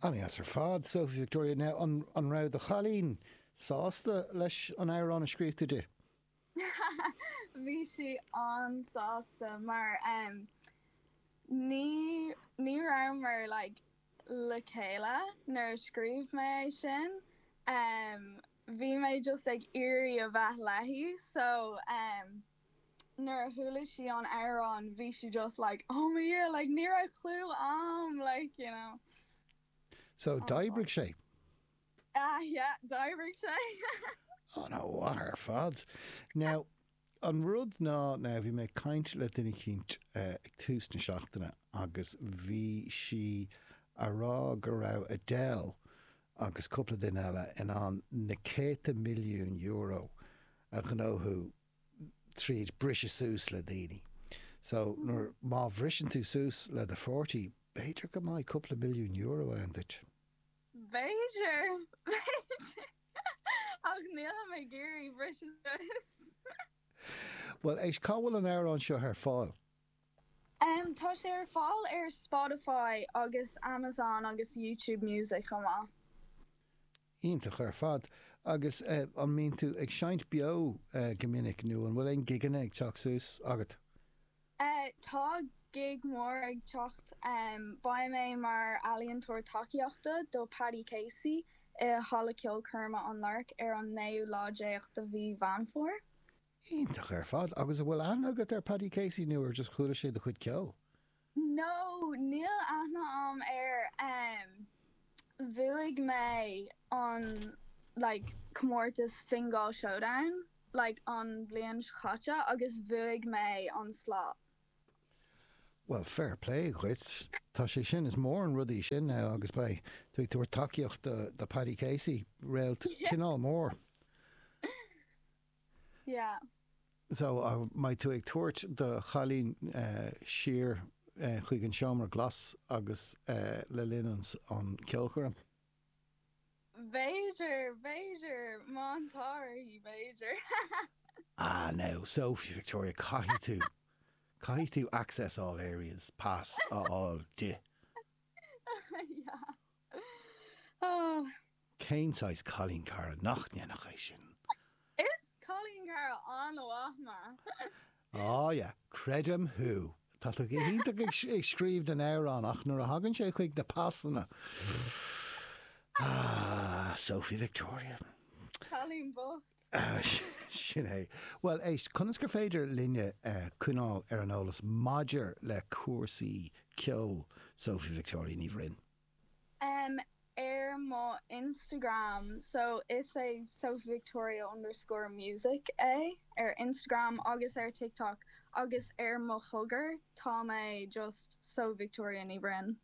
An-deas ar fad, Sophie Victoria. Now, an, an raibh do chailín sásta leis an amhrán a scríobh tú di? Bhí sí an-sásta mar um, ní, ní rabhamar like, le chéile nuair a scríobh mé é sin. Um, bhí mé just ag iarraidh a bheith léi so um, Nuair a chuala sí an amhrán bhí sí just like oh my yeah like ní raibh clue a'm like you know. So oh d'oibrigh sé? Ah yeah d'oibrigh sé. Oh an-mhaith ar fad. Now an rud ná now bhí mé ag caint le duine eicínt ag tús na seachtaine agus bhí sí a rá go raibh Adele agus cúpla duine eile in ann na céadta milliúin euro a ghnóthú tríd briseadh suas le daoine. So, nuair, má bhriseann tú suas le do pháirtí, b'fhéidir go mbeidh cúpla milliún euro ann duit. B'fhéidir, b'fhéidir, ach nílim ag iarraidh briseadh suas. Bhuel, éist, cá bhfuil an amhrán seo ar fáil? Tá sé ar fáil ar Spotify agus Amazon agus YouTube Music chomh maith. Iontach ar fad. Agus an mbíonn tú ag seinnt beo go minic nó an bhfuil aon gigeanna ag teacht suas agat? Tá gig mór ag teacht. Beidh mé mar ealaíontóir tacaíochta do Paddy Casey i Halla Ceolchoirme an Lark ar an naoú lá déag de mhí Mheán Fómhair. Iontach ar fad. Agus an bhfuil aithne agat ar Paddy Casey nó ar just chuala sé do chuid ceoil? No, níl aithne a'am air. Bhuaigh mé an like comórtas Fingal Showdown like an bhliain seo chaite agus bhuaigh mé an slot. Bhuel fair play dhuit. Tá sé sin, is mór an rud é sin now agus beidh tú ag tabhairt tacaíocht do Paddy Casey, réalt cineál mór. Yeah. So, an mbeidh tú ag tabhairt do chailín siar chuig an seomra glas agus le linn an cheolchoirm? B'fhéidir, b'fhéidir, má tá uirthi, b'fhéidir. Ah, now, so, Victoria, caithfidh tú, caithfidh tú access all areas pass a fháil di. Yeah. Oh. Cén saghas cailín cara nach ndéanfadh é sin? Is cailín cara an-mhaith mé. Oh yeah, creidim thú. Tá tú go hiontach ag scríobh na n-amhrán ach nuair a thagann sé chuig na pasanna, ah, Sophie Victoria. Cailín bocht. Sin é. Bhuel, éist, conas gur féidir linne coinneáil ar an eolas maidir le cúrsaí ceoil? Sophie Victoria Ní Bhroin. Em, ar mo Instagram, so is é sophievictoria underscore music é ar Instagram agus ar TikTok agus ar mo chogar tá mé just Sophie Victoria Ní Bhroin.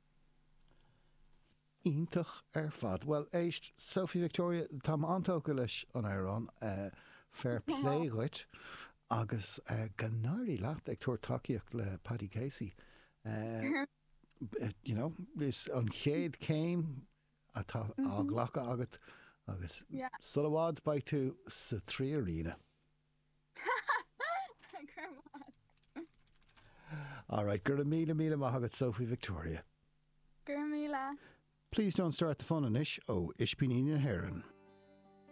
Iontach ar fad. Bhuel, éist, Sophie Victoria, tá mé an-tógtha leis an amhrán, fair plé dhuit, agus go n-éirí leat ag tabhairt tacaíocht le Paddy Casey. You know, is an chéad céim atá á ghlacadh agat agus sula bhfad beidh tú sa Three Arena. Alright, go raibh míle míle maith agat Sophie Victoria. Go raibh míle. Please Don't Start the Fun anois ó Ispíní na hÉireann.